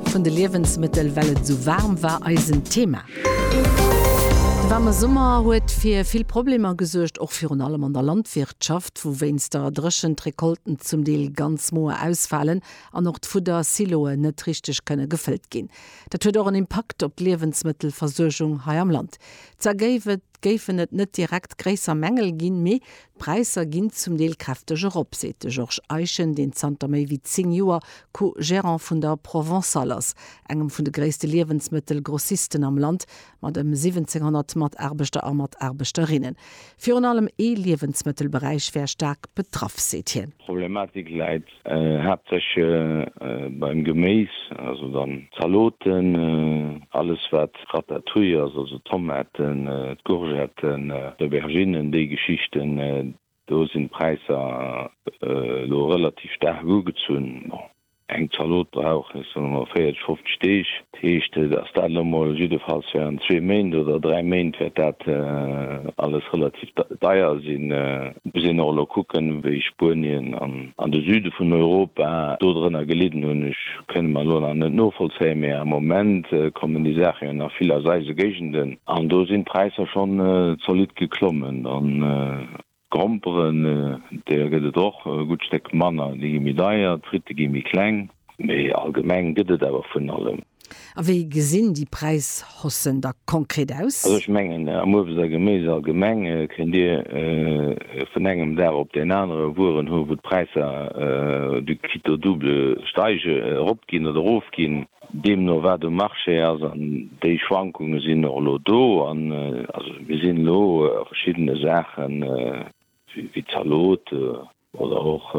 Vun de Liewensmëttel, well et esou waarm war, eisen Thema. De waarme Summer huet fir vill Problemer gesuergt, och virun allem an der Landwirtschaft, wou wéinst der Dréchent d'Recolten zum Deel ganz moer ausfalen an och d'Fudder-Siloen net richteg kënne gefëllt ginn. Dat huet och en Impakt op d'Liewensmëttelversuergung hei am Land. Zwar géifen et net direkt gréisser Mängel ginn, mee D'Präisser ginn zum Deel kräfteg erop, seet de Georges Eischen, deen zanter méi wéi 10 Joer Co-Gérant vun der Provençale ass, engem vun de gréisste Liewensmëttel-Grossisten am Land mat ëm 1.700 Mataarbechter a Mataarbechterinnen. Virun allem ee Liewensmëttelberäich wär staark betraff, seet hien. D'Problematik läit Haaptsächlech beim Geméis, also dann Zaloten, alles wat Ratatouille ass, also Tomaten, d'Courgetten, d'Auberginnen, déi Geschichten, do sinn d'Präisser elo relativ staark ugezunn. Bon, eng Zalot brauch, ech soe mol, 40, 50 Deeg. Dat heescht, dass dat elo mol jiddefalls während zwee Méint oder dräi Méint wäert dat alles relativ deier sinn. Et muss een och elo kucken, wéi Spuenien an de Süde vun Europa do drënner gelidden hunn. Ech kënne mer elo nach net novollzéien, mee am Moment kommen déi Saache jo nach vill aus eise Géigenden an do sinn d'Präisser schonn zolidd geklommen. D'Gromperen, där gëtt et och e gutt Stéck manner, déi gi méi deier, d'Fritte gi méi kleng. Mee allgemeng gëtt et awer vun allem. A wéi gesinn déi Präishaussen da konkret aus? Also ech mengen, am Uebst a Geméis allgemeng kënnt Dir vun engem Dag op deen anere Wueren hu wou d'Präisser du quitte au double steige, eropginn oder erofginn. deemno wat um Marché ass, an déi Schwankunge sinn och elo do. An also mir sinn elo a verschiddene Saachen, wéi Zalote oder och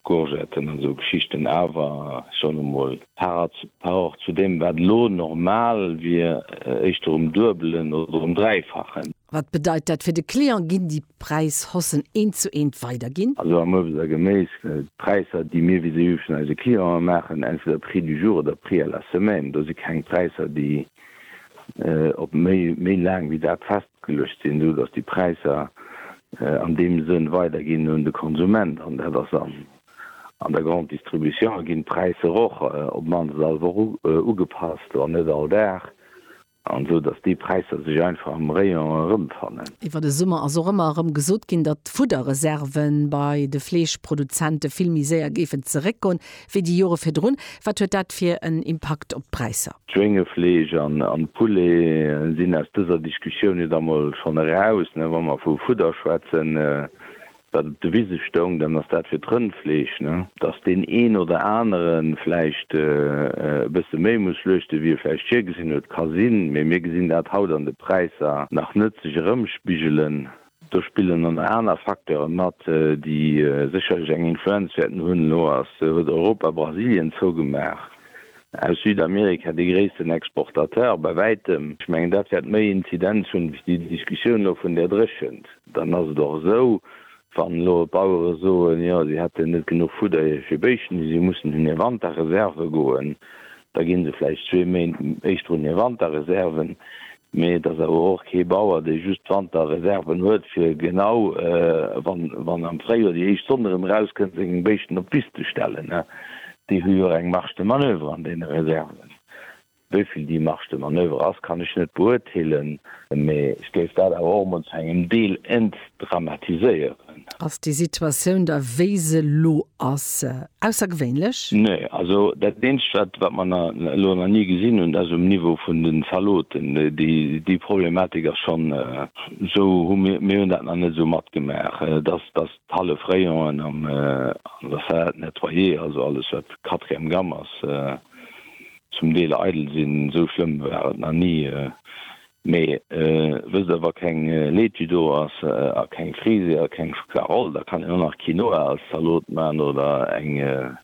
Courgetten an esou Geschichten, awer ech soen emol par rapport zu deem wat elo normal wier, éischter um Duebelen oder um Dräifachen. Wat bedeit dat fir de Client? Ginn déi Präis hossen eent zu eent weider ginn. Also am Uebst a Geméis gëllt, d'Präisser déi mir vis-à-vis vun eise Clienten maachen, entweder Prix du jour oder Prix à la semaine. Do si keng Präisser déi op méi méi laang wéi dat festgeluecht sinn, sou datt déi Präisser an deem Sënn weider ginn un de Konsument an dat ass an an der Grande Distribution ginn d'Präisser och op d'mannst all Woch ugepasst, wann net all Dag. An esou dass déi Präisser sech einfach am Rayon erëmfannen. Iwwer de Summer ass och ëmmer erëm gesot ginn, datt d'Fudderreserve bei de Fleeschproduzente vill méi séier géifen zeréckgoen, wéi déi Jore virdrun. Wat huet dat fir en Impakt op d'Präisser? Schwéngefleesch an Poulet sinn aus dëser Diskussioun jo da mol schonn eraus, wa mer vu Fudder schwätzen. Wann de Wise stoung, dann ass dat fir d'Rëndfleesch, ne? Dass deen een oder anere vläicht e bësse méi muss schluechte wéi e vläicht virgesinn huet, ka sinn, mee mir gesinn dat haut an de Präisser nach net sech erëmspigelen. Do spillen dann nach aner Facteure mat, déi sécherlech eng Influenz wäerten hunn. Elo huet Europa Brasilien zougemaach, Aus Südamerika, dee gréissten Exportateur bei wäitem. Ech mengen, dat wäert méi Inzidenz hunn wéi déi Diskussioun elo vun där Dréchent. Dann ass et och esou, wann elo d'Bauere soen, jo si hätten net genuch Fudder fir Béischten, déi si mussen un hir Wanterreserve goen, da gi se vläicht zwee Méint éischter un hir Wanterreserven, Mee et ass awer och kee Bauer, dee just Wanter Reserven huet, fir genau wann am Fréijoer déi éischt Sonn erëm erauskënnt, seng Béischten op d'Wiss ze stellen. Déi hu jo och eng Marge de manoeuvre an deene Reserven. Wéi vill déi Marge de manoeuvre ass, kann ech net beuerteelen. Mee ech géif dat awer och emol zu engem Deel entdramatiséieren. Ass déi Situatioun da wéi se elo ass aussergewéinlech? Nee, also dat eenzegt wat wat mer elo nach ni gesinn hunn, dat ass um Niveau vun de Zaloten. Déi Problematik ass schonn esou, mir hunn dat nach net esou matgemaach, dass dass d'hallef Rayon'en an der Salade nettoyée, also alles wat quatrième gamme ass, zum Deel eidel sinn. Esou schlëmm war et nach ni. Mee wësst der, wa keng Laitue do ass a keng Frise a keng Schokla-Roll, da kann een och nach Quinoa als Zalot man oder eng,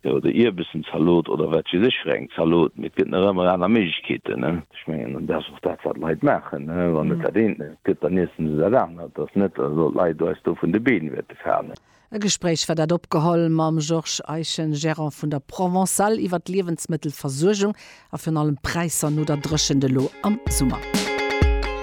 jo, oder Ierbessen-Zalot oder wat weess ech fir eng Zalot. Mee et gëtt nach ëmmer aner Méiglechkeeten, ne? Ech mengen, an dat ass och dat, wat d'Leit maachen, ne? Wann et dat eent net gëtt, dann iessen se dat anert. Et ass net, dass elo d'Leit eis do vun de Been wäerte falen. E Gespréich war dat opgeholl mam Georges Eischen, Gérant vun der Provençale iwwer d'Liewensmëttelversuergung a virun allem d'Präisser no der Dréchent elo am Summer.